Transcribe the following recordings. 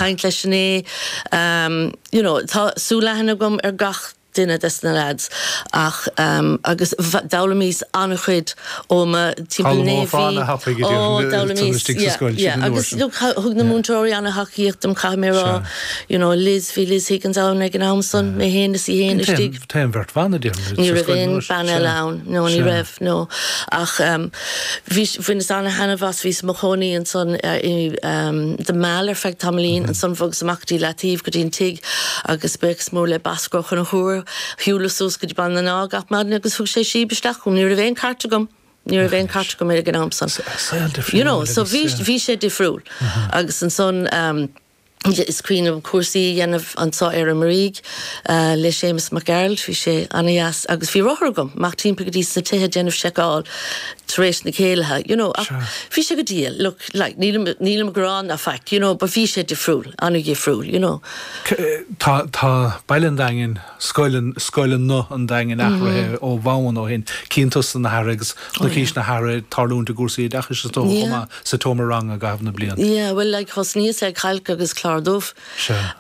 caint le Sinéad, em, you know, tá súil leathan agam ar gach duine des na lads ach em, agus d'fhoghlaimíos an-chuid ó mo thimpeall, y'know, Foghlaimeofá ana-thapaidh idir oh, tusa d'fhoghlaimíos, istigh sa yeah, scoil, siad yeah, an uair agus sin, look, thug na yeah. múinteoirí ana-thacaíocht dom, caithfidh mé a rá, Sea. you know, Liz, bhí Liz Higgins ann ag an am san, mé fhéin agus í fhéin Cinnte. istigh. Té an bheirt bhan a déarfaidh muid sa scoil anois. Ní raibh aon bhean eile ann. No, ní raibh, no. Ach bhí, bhaineas ana-thaitneamh as, bhíos i mo chónaí ansan i The Mall ar feadh tamaillín, ansan bhogas amach go dtí Leataoibh, go dtí an tigh agus buíochas mór le Bosco Ó Conchúir, shiúlas suas go dtí Bun an Átha gach maidin agus thug sé síob isteach dom. Ní raibh aon cairt agam, ní raibh aon cairt agam ag an am san. You know, so bhí sé difriúil agus ansan, Is cuimhin liom cúrsaí a dhéanamh anso ar an Muirígh le Séamus Mac Gearailt, bhí sé ana-dheas agus bhí rothar agam, amach timpeall go dtí na tithe ag déanamh seiceáil tar éis na céilithe, you know, ach bhí sé go diail, look, like, nílim, nílim ag gearán ná faic, you know, but bhí sé difriúil, ana-dhifriúil, you know. Tá, tá Baile an Daingin scoileanna an Daingin athraithe ó bhonn ó shin, cinnte tá ana-athrú agus chonaicís ana-athrú ag tarlúint i gcúrsaí oideachais is dócha chomh maith sa tseomra ranga i gcaitheamh na mblianta. Yeah, bhuel, like, thosnaíos le cailc agus clár dubh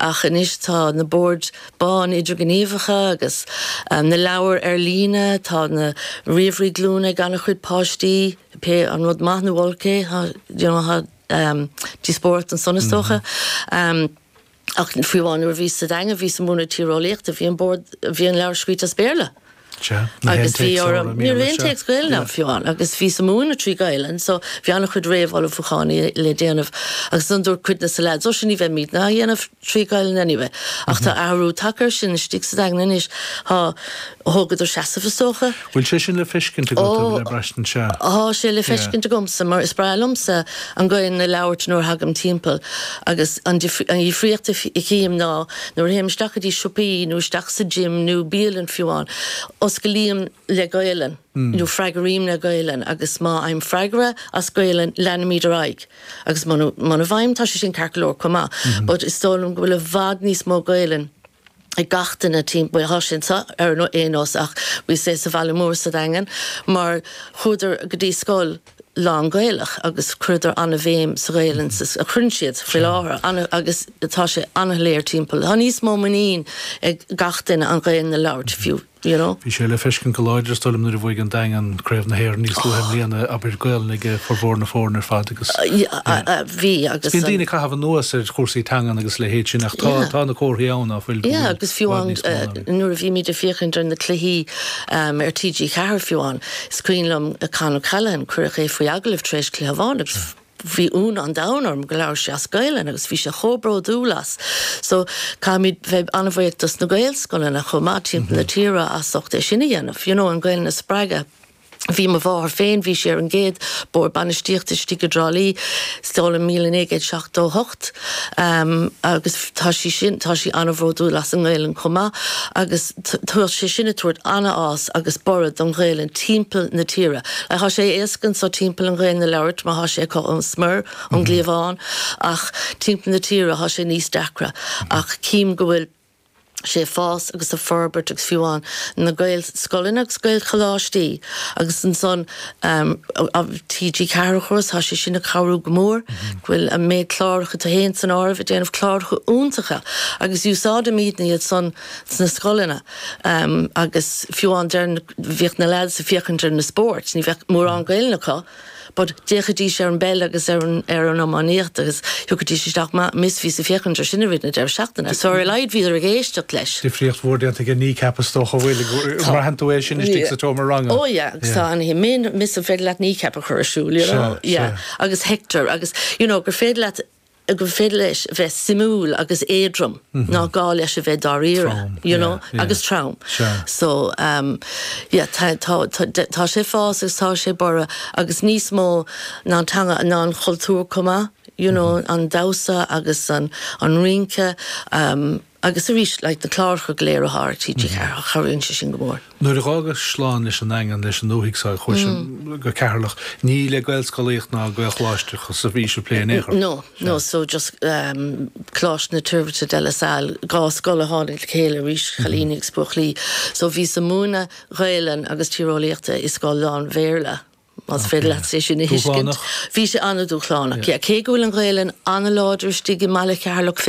ach anois tá na boird bhána idirghníomhacha agus na leabhair ar líne, tá na ríomhairí glúine ag an-chuid páistí, pé acu rud maith nó olc é, you know, tá díospóireacht ansan is dócha. Ach fiú amháin nuair a bhíos sa Daingean, bhíos ag múineadh tíreolaíochta, bhí an bord, bhí an leabhar scríte as Béarla. Sea, ní haon Agus bhí téacs orm, i ní raibh Mbéarla, aon sea. téacs Gaelainne agam Yeah. fiú amháin, agus bhíos ag múineadh trí Ghaelainn, so bhí an-chuid réamhullmhúcháin i, le déanamh, agus ansan dúirt cuid de na lads, ó sea, ní bheimid in ann é a dhéanamh trí Ghaelainn anyway. Ach tá athrú tagtha ar sin istigh sa Daingean anois, tá, thógadar seasamh is dócha, Bhfuil sé sin le feiscint agat, nó le braistint? Ó, thá sé le feiscint agamsa, mar is breá liomsa an Ghaelainn a labhairt nuair a thagaim timpeall, agus an difríocht a chím ná, nuair a théim isteach go dtí siopaí, nó isteach sa gym, nó bialann fiú amháin, osclaím le Gaelainn, nó freagraím le Gaelainn, agus má fhaighim freagra as Gaelainn, leanaimid ar aghaidh, agus muna bhfaighim, tá sé sin ceart go leor comh maith, but is dóigh liom go bhfuil i bhfad níos mó Gaelainn, ag gach duine timpeall tá sé ansan, ar aon nós ach speisialta sa bhaile mór sa Daingean mar chuadar go dtí scoil lán-Ghaelach agus chuireadar an-bhéim sa Ghaelainn sa, agus cuireann siad faoi láthair an, agus tá sé an-léir timpeall, tá níos mó muinín ag gach duine an Ghaelainn a labhairt fiú. You know. Bhí sé le feiscint go láidir is dóigh liom nuair a bhuaigh an Daingean Craobh na hÉireann níos luaithe i mbliana, abair. Gaolainn ag formhór na foirne ar fad agus. Bhí agus. Bíonn daoine ag caitheamh anuas ar chúrsaí teangan agus a leithéid sin ach tá tá na comharthaí ann ná fuil go bhfuil i bhfad níos mó ann. Yeah agus fiú amháin nuair a bhímid ag féachaint ar na cluichí ar TG4 fiú amháin, is cuimhin liom Con O'Callaghan, cuireadh é faoi agallamh tar éis cluiche amháin agus. Bhí ionadh an domhain orm gur labhair sé as Gaelainn agus bhí sé chomh bródúil as. So, caithfimid bheith an-bhuíoch dos na Gaelscoileanna chomh maith timpeall na tíre as ucht é sin a dhéanamh, you know, an Ghaelainn a spreagadh. Bhí mo mháthair féin, bhí sí ar an gcéad bord bainistíochta istigh i dTrá Lí, is dóigh liom míle naoi gcéad seachtó hocht. Agus tá sí sin, tá sí an-bhródúil as an nGaelainn chomh maith agus tá sé sin ag tabhairt an-fhás agus borradh don Ghaelainn timpeall na tíre. Like, thá sé éasca anso timpeall an Ghaelainn a labhairt mar thá sé acu ón smior, ón gcliabhán ach timpeall na tíre thá sé níos deacra ach cím go bhfuil, sé ag fás agus ag forbairt agus fiú amháin na Gaelscoileanna agus Gaelcholáistí agus ansan TG4 chomh maith, tá sé sin ag cabhrú go mór go bhfuil an méid cláracha, atá, fhéin san áireamh, ag déanamh cláracha iontacha agus úsáidimidne iad san sna scoileanna agus fiú amháin deireann, bhíodh na leaids ag féachaint ar na spóirt, ní bheadh mórán Gaelainne acu, but d'fhéachaidís ar an bpeil agus ar an, ar an iománaíocht agus tiocfaidís isteach, ó Miss, bhíos ag féachaint ar sin i rith na deireadh seachtaine, so ar a laghad bhíodar ag éisteacht leis. difríocht mhór déanta ag an Kneecap is dócha, an bhfuil? Tá. Braitheann tú é sin istigh sa tseomra ranga. Oh yeah, agus tá, yeah, Miss, an féidir leat Kneecap a chur ar siúl, you Sea, know, yeah, sea. agus Hector agus, you know, gur féidir leat, gur féidir leis a bheith suimiúil agus éadrom ná gá leis a bheith dáiríre, you know, agus trom. So, yeah, tá, tá, tá sé ag fás agus tá sé ag borradh agus níos mó ná an teanga, ná an cultúr chomh maith, you know, an damhsa agus an, an rince. Agus arís, like, na cláracha go léir athá ar TG4, cabhraíonn sé sin go mór. Nuair a dh'fhágais slán leis an nDaingean, leis an ndúthaigh so, chuais go Ceatharlach, ní le Gaelscolaíocht ná Gaelcholáisteachas a bhís ag plé in aon chor? No, no, so just ehm, Coláiste na Toirbhirte De La Salle, dhá scoil a tháinig le chéile arís, cailíní agus buachaillí, so bhíos a' múineadh Gaelainn agus Tíreolaíochta i scoil lán-Bhéarla, más féidir leat sé sin a thuiscint. Dúshlánach? Bhí sé an-dúshlánach, yeah. Cé go bhfuil an Ghaelainn an-láidir istigh i mbaile Cheatharlach féin,